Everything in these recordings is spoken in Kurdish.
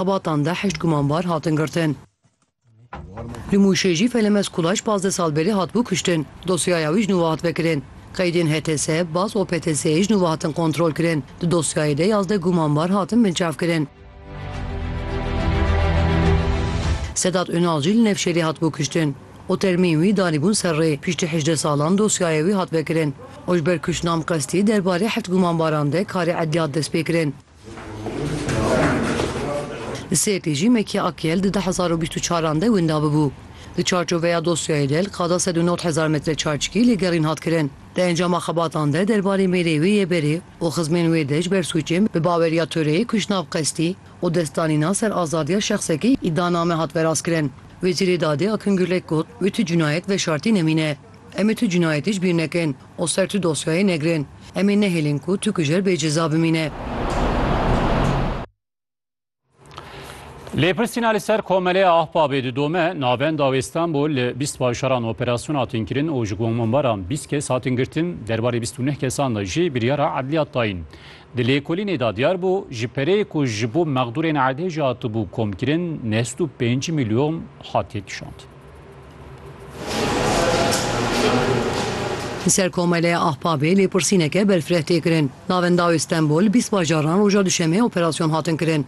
Xebatan de heşt gumanbar hatin girtin. Li Mûşê jî Felemez Kulaş pazdeh sal berî hatibû kuştin. Dosyaya wî ji nû ve hat vekirin. Qeydên HTS, bas û PTS'ê ji nû ve hatin kontrolkirin. Di dosyayê de yazdeh gumanbar hatin binçavkirin. Sedat Unal jî li Nevşehirê hatibû kuştin û termîn wî danîbûn ser rê. Piştî hejdeh salan dosyaya wî hat vekirin û ji ber kuştinam qestî derbarê heft gumanbaran de karê edliyat destpêkirin. Li Sêrtê jî Mekî Akyel di du hezar û bîst û çaran de winda bû. Di çarçoveya dosyayê de li qada sed û nod hezar metre çarçikî lêgerîn hat kirin. Di encama xebatan de derbarê mêrê wê yê berê û xizmên wê de ji ber sûcên bi baweriya Toreyê kuştnav qestî û destdanîna ser azadiya şexsekî îddianame hat verazkirin. Wezîrê Dadê Akîn Gurlek got, Wê tu cinayet veşartî nemîne. Em ê tu cinayetê ji bîr nekin û ser tu dosyayê negirin. Em ê nehêlin ku tu kujer bê ceza bimîne. Lêpirsîna li ser Komeleya Ahbabê didome, Navenda wê Stenbol li bîst bajaran operasyon hatin kirin û ji gomanbaran bîst kes hatin girtin, derbarê bîst û neh kesan de jî biryara edliyat dayîn. Di lêkolînê de diyar bû, ji pereyê ku ji bo mexdûrên erdhêjê hatibû komkirin neh sed û pênc milyon hatiye kişand. Li ser Komeleya Ahbabê lêpirsîneke berfireh tê kirin. Navenda wê Stenbol, bîst bajaran roja duşemê operasyon hatin kirin.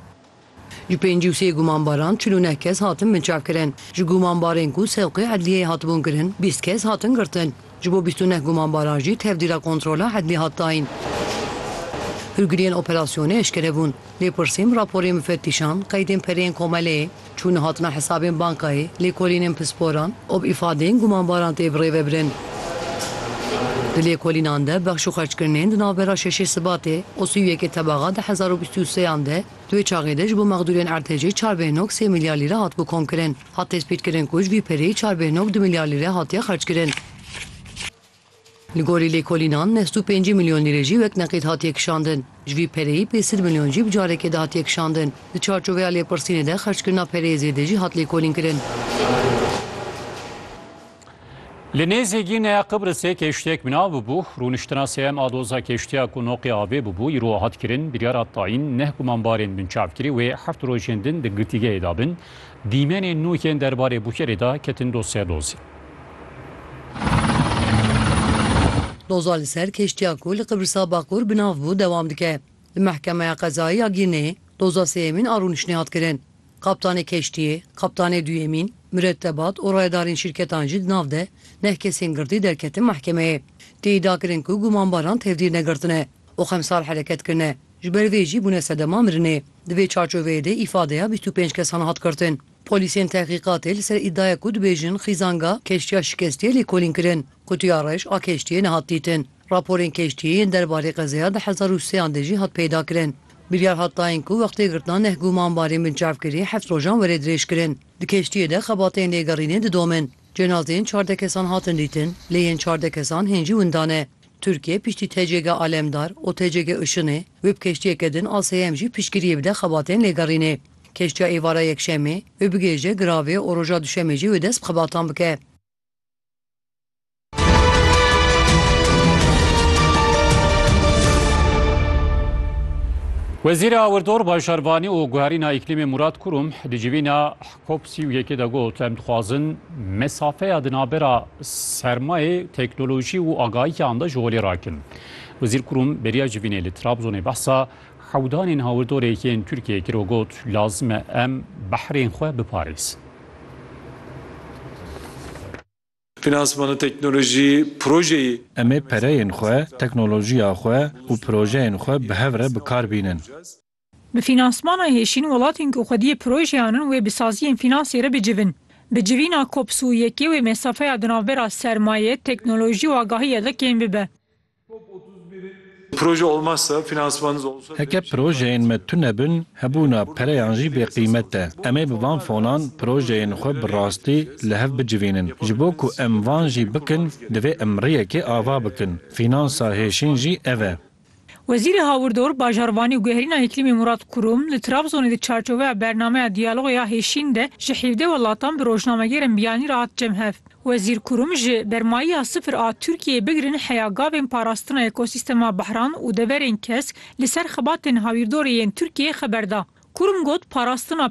Ji pêncî û sê gumanbaran çil û neh kes hatin binçavkirin. Ji gumanbarên ku sewqê edliyeyê hatibûn kirin, bîst kes hatin girtin. Ji bo bîst û neh gumanbaran jî tevdîra kontrola hedmî hat dayîn. Hilgiriyên operasyonê eşkere bûn. Lêpirsîm, raporên mifettîşan, qeydên pereyên komeleyê, çûna hatina hesabên bankayê, lêkolînên pisporan û bi îfadeyên gumanbaran tê birêvebirin. Di lêkolînan de bexş û xerckirinên di navbera şeşê Sibatê û sî û yekê Tebaxa du hezar û bîst û sê yan de, di wê çaxê de ji bo mexdûrên ertecê çar bêhnog sê milyar lîre hatibû komkirin. Hat tespîtkirin ku ji vî perê çar bê nod du milyar lîre hatiye xerckirin. Li gorî lêkolînan neh du pêncî milyon lîre jî wek neqîd hatiye kişandin. Ji vî pereyî pê sed milyon jî bi carekê de hatiye kişandin. Di çarçoveya lêpirsînê de xerckirina pereyê zêde jî hat lêkolînkirin. Li nêzî Gîneya Qibrisê kêştiyek bina bûbû. Rûniştina sm a doza kêştiya ku noqê avê bûbû îro hat kirin. Biryara tayîn neh gumanbarên binçav kirî wê heft rojên din di girtîgehê de bin. Dîmenên nû yên derbarê Bukerê de ketin doz ser dozî. Doza li ser kêştiya ku li Qibrisa Baqûr binav bû dewam dike. Li Mehkemeya Qezayî ya Gîneyê doza sêyemîn a rûniştinê hat kirin. Kaptanê keştiyê, kaptanê duyemîn, miretebat û rayedarên şîrketan jî di nav de neh kesên girtî derketin mehkemeyê. Tê îda kirin ku gumanbaran tevdîr negirtine û xemsar hereket kirine, ji ber vê jî bûne sedema mirinê. Di vê çarçoveyê de îfadeya bîst û pênc kesan hat girtin. Polîsên tehqîqatê li ser îdaya ku dibêjin xîzanga keştiya şikestiye lêkolîn kirin. Qutiya reş a keştiyê nehat dîtin. Raporên keştiyê yên derbarê qezeya di hezar û sê an de jî hat peydakirin. Biryar hat dayîn ku wextê girtina neh gumanbarên binçavkirî heft rojan were dirêjkirin. Di keştiyê de xebatên lêgerînê didomin. Cenazeyên çardeh kesan hatin dîtin, lê yên çardeh kesan hên jî winda ne. Tirkiye piştî TCG Alemdar û TCG Işinê wê bi keştiyeke din a seyem jî piştgiriyê bide xebatên lêgerînê. Keştiya êvara Yekşemê wê bigihêje giravê û roja Duşemê jî wê dest bi xebatan bike. Wezîrê Awirdor Bajarvanî û Guherîna Îklîmê Murad Kurum di civîna COP sî û yekê de got em dixwazin mesafeya di navbera sermayê, teknolojî û agahiyan de ji holê rakin. Wezîr Kurum beriya civînê li Trabzonê behsa hewdanên hawirdorê yên Tirkiyeyê kir û got lazim e em behrên xwe biparêzin. Finansmana teknolojî projeyî. Em ê pereyên xwe, teknolojiya xwe û projeyên xwe bi hev re bi kar bînin. Bi finansmana hêşîn welatên ku xwediyê projeyan in wê bi saziyên finansê re bicivin. Bi civîna COPS û yekê wê mesafeya di navbera sermaye, teknolojî û agahiyê de kêm bibe. Heke projeyên me tune bin, hebûna pereyan jî bêqîmet e. Em ê bi van fonan projeyên xwe bi rastî li hev bicivînin. Ji bo ku em van jî bikin, divê em rêyekê ava bikin. Fînansa hêşîn jî ev e. Wezîrê Hawirdor, Bajarvanî û Guherîna Îklîmê Murat Kurum, li Trabzonê di çarçoveya bernameya Diyaloga ya Hêşîn de ji hîvdeh welatan bi rojnamegêrên biyanî re hat cem hev. Wezîr Kurum ji bermayiya sifir a Tirkiyeyê bigirin heya gavên parastina ekosîstema behran û deverên kesk li ser xebatên hawîrdorê yên Tirkiyeyê xeber da. Kurum got, Parastina